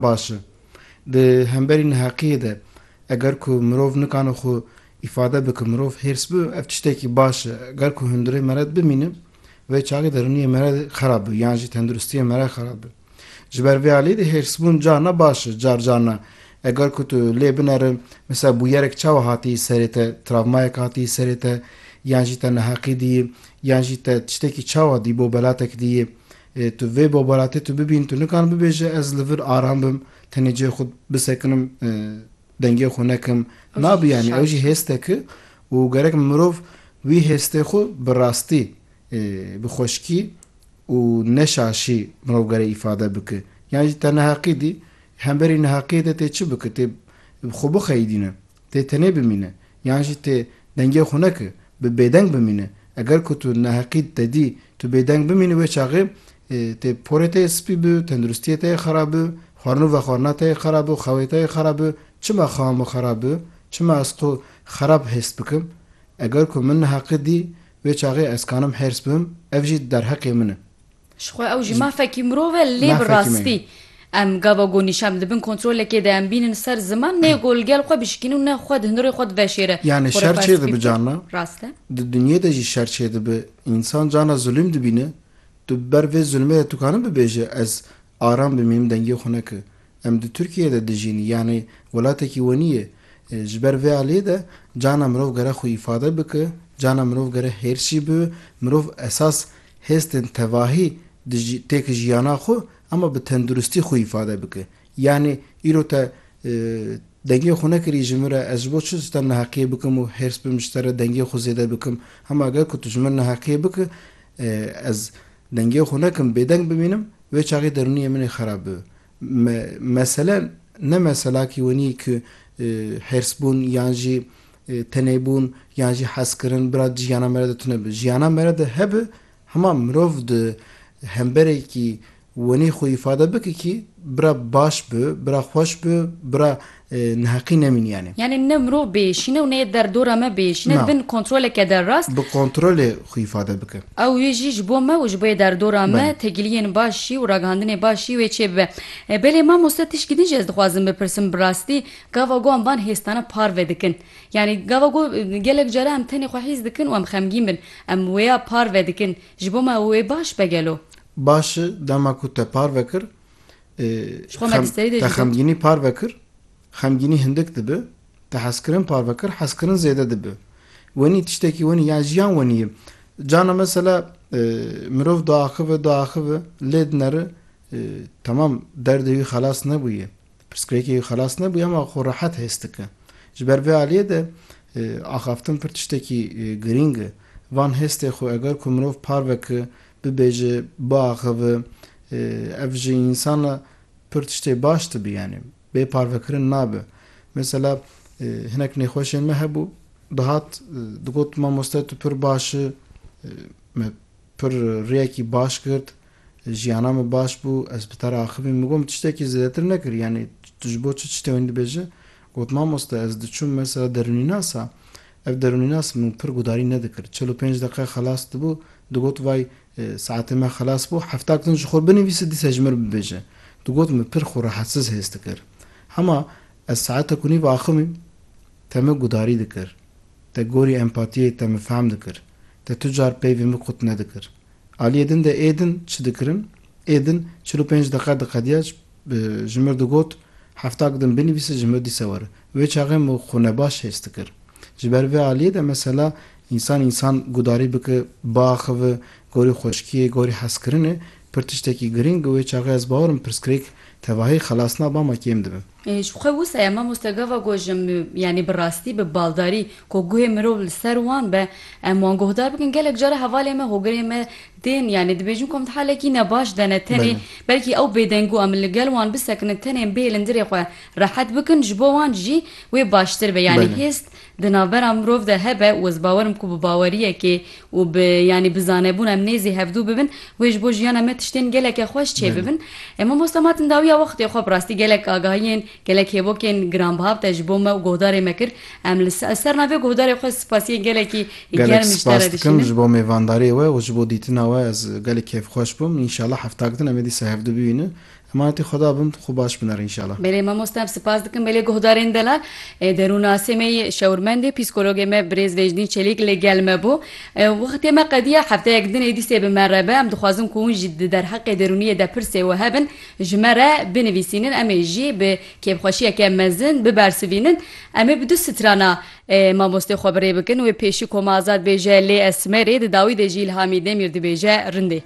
Baş e. Di hemberî neheqiyê de eger ku mirov nikane xwe îfade bike, mirov hêrs bi, ev tiştekî baş e. Eger ku hundirê mered bimîne, vê çaxê derûniyê me re xerab bi yan jî tenduristiyê me re xerab bi. Ji ber vê alî de hêrsbûn carna baş e, car carna eger ku tu lê binere misal bûyerek çawa hatiyî serê te, travmayek hatiyî serê te yan jî te neheqî diyî yan jî te tiştekî çawa dî bo belatek diyî, Ê tu vê babaratê tu bibîn tu nikarin bibêje ez li vir aram bim tenê cihê xwe bisekinim dengê xwe nekim nabi yanî ew jî hêstek e û gerek mirov wî hêstê xwe bi rastî bi xweşkî û ne şaşî mirov gerek îfade bike yan jî te neheqî dî hemberî neheqiyê de tê çi bike tê xwe bixeyidîne tê tenê bimîne yan jî tê dengê xwe neke bi bêdeng bimîne eger ku tu neheqî te dî Tu bêdeng bimînî wê çaxê tê porê te yê spî bi, tenduristiyê te yê xerab bi, xwarin û vexwarina te yê xerab bi, xewê te yê xerab bi, çima xewa min xerab bi, çima ez xwe xerab hêst bikim? Eger ku min neheqî dî, wê çaxê ez kanim hêrs bibim, ev jî derheqê min e. Ji xwe ew jî mafekî mirov e, lê bi rastî em gava gonî şem di bin kontrolekê de em bînin ser ziman, nê ku li gel xwe bişikînin û ne xwe di hundirê xwe di veşêre. Yanî şer çêdibi carna, di dinyê de jî şer çêdibi Însan carna zulîm dibîne, tu bi ber vê zulmê de tukanin bibêje ez aram bim yê min dengê xwe neke. Em di Tirkiyeyê de dijîn yanî welatekî we nîyê. Ji ber vê aliyê de carna mirov gere xwe îfade bike, carna mirov gere hêrs jî bibe, mirov esas hêstên tevahî têke jiyana xwe ama bi tenduristî xwe îfade bike. Yanî îro te dengê xwe nekirî ji min re, ez ji bo çi ji te neheqiyê bikim û hêrs bim ji te re dengê xwe zêde bikim? Hema gel ku tu ji min neheqiyê biki, ez dengê xwe nekim bêdeng bimînim, wê çaxê derûniyê min ê xerab bibe. Me mesele ne mesela kî wenî ku hêrsbûn yan jî tenêbûn yan jî hezkirin bira di jiyana me re de tune bi. Jiyana me re de hebe hema mirov di hemberekî Wenî xwe îfade bike kî bira baş bi, bira xweş bi, bira neheqî nemînîyanê. Yanî ne mirov bêşîne û ne yê derdora me bêşîne, di bin kontroleke derast. Bi kontrolê xwe îfade bike. Ew yê jî ji bo me û ji bo yê derdora me têkiliyên baş jî û ragihandinê baş jî wê çêbibe. Belê mamoste tişkî din jî ez dixwazim bipirsim, bi rastî gava ku em van hêstana parve dikin, yanî gava ku gelek care em tenê xwe hîs dikin û em xemgîn bin, em wêya parve dikin, ji bo me ew ê baş be gelo? Baş e, dema ku te parve kir, Ji xwe me dîsterî dê jî te got. xemgînî parve kir, xemgînî hindik dibe, te hezkirin parve kir, hezkirin zêde dibe. Wenî tiştekî wenî ya jiyan wenî ye. Cana mesela mirov diaxive, diaxive, lê dineri temam derdê wî xelas nebûye, pirsgirêkê wî xelas nebûye ama xwe rehet hês dike. Ji ber vê aliyê de axaftin pir tiştekî girîng e. Van hêstê xwe eger ku mirov parve ki Bibêje, biaxive, ev ji însan re pir tiştê baş dibe, yanî bê parvekirin nabe. Mesela hinek nêxweşên me hebû, dihat digot mamoste tu pir baş î, me pir rêyekî baş girt, jiyana min baş bû, ez bi te re axivîm. Min got min tiştekî zêdetir nekir, yanî tu ji bo çi tiştê wî dibêje? Got mamoste ez diçûm mesela derûnînasa, Ev derûnînas min pir gudarî nedikir. Çel û pênc deqe xelas dibû, digot vay saetê me xelas bû, hefta kitin ji xwe binivîse dîsa ji min re bibêje. Digot min pir xwe rehetsiz hêz dikir. Hema ez saetek û nîv axivîm te min gudarî dikir. Te gorî empatiyê te min fehm dikir. Te tu car peyvê min qut nedikir. Aliyê din de ê din çi dikirin? Ê din çil û pênc deqe diqediya ji. Bi ji mir digot, Hefta gidim binivîse ji mir dîse were. Wê çaxê min xwe nebaş hês dikir. Ji ber vê aliyê de mesela însan însan gudarî bike, biaxive, gorî xweşkiyê, gorî hezkirinê pir tiştekî girîng û wê çaxê ez bawer im pirsgirêk tevahî xelas na bama kêm dibe. Ji xwe wisa ya mamoste gava gojim yanî bi rastî, bi baldarî ku guhê mirov li ser wan be em wan guhdar bikin gelek care hevalên me, hogirên me Tên yanî dibêjin ku em di halekî ne baş de ne. Tenê belkî ew bêdeng bû em li gel wan bisekinin tenê bêlin dirê xwe rehet bikin ji bo wan jî wê baştir be. Yanî hêst di navbera mirov de hebe û ez bawer im ku bi baweriyekê û bi yanî bi zanebûn em nêzî hevdû bibin wê ji bo jiyana me tiştên geleke xweş çêbibin. Mamosta Matin dawiya wextê xwe bi rastî gelek agahiyên Gelek hêvokên giranbiha bi te ji bo me û guhdarê me kir. Em li ser navê guhdarê xwe spasiyên gelekî germ ji te re dişînin. Gelek spas dikim ji bo mêvandariyê we û ji bo dîtina we. Ez gelê kêfxweş bûm. Înşallah hefta din em ê dîsa hevdu bibînin. Emanetî Xweda bin, tu xwe baş binêr înşallah. Belê mamoste em spas dikin belê guhdarên delal. Derûnnasê me yê şewirmendê psîkologê me birêz Vêjnî Çelîk li gel me bû. Wextê me qediya hefteyek din êdîsê bi me re be. Em dixwazin ku hûn jî di derheqê derûniyê de pirsê we hebin. Ji me re binivîsînin em ê jî bi kêfxweşiyeke mezin bibersivînin. Em ê bi du strana mamostê xwe bi rê bikin. Wê pêşî koma azad bêje lê esmerê di dawî de jî îlhamî Demîr dibêje rindê.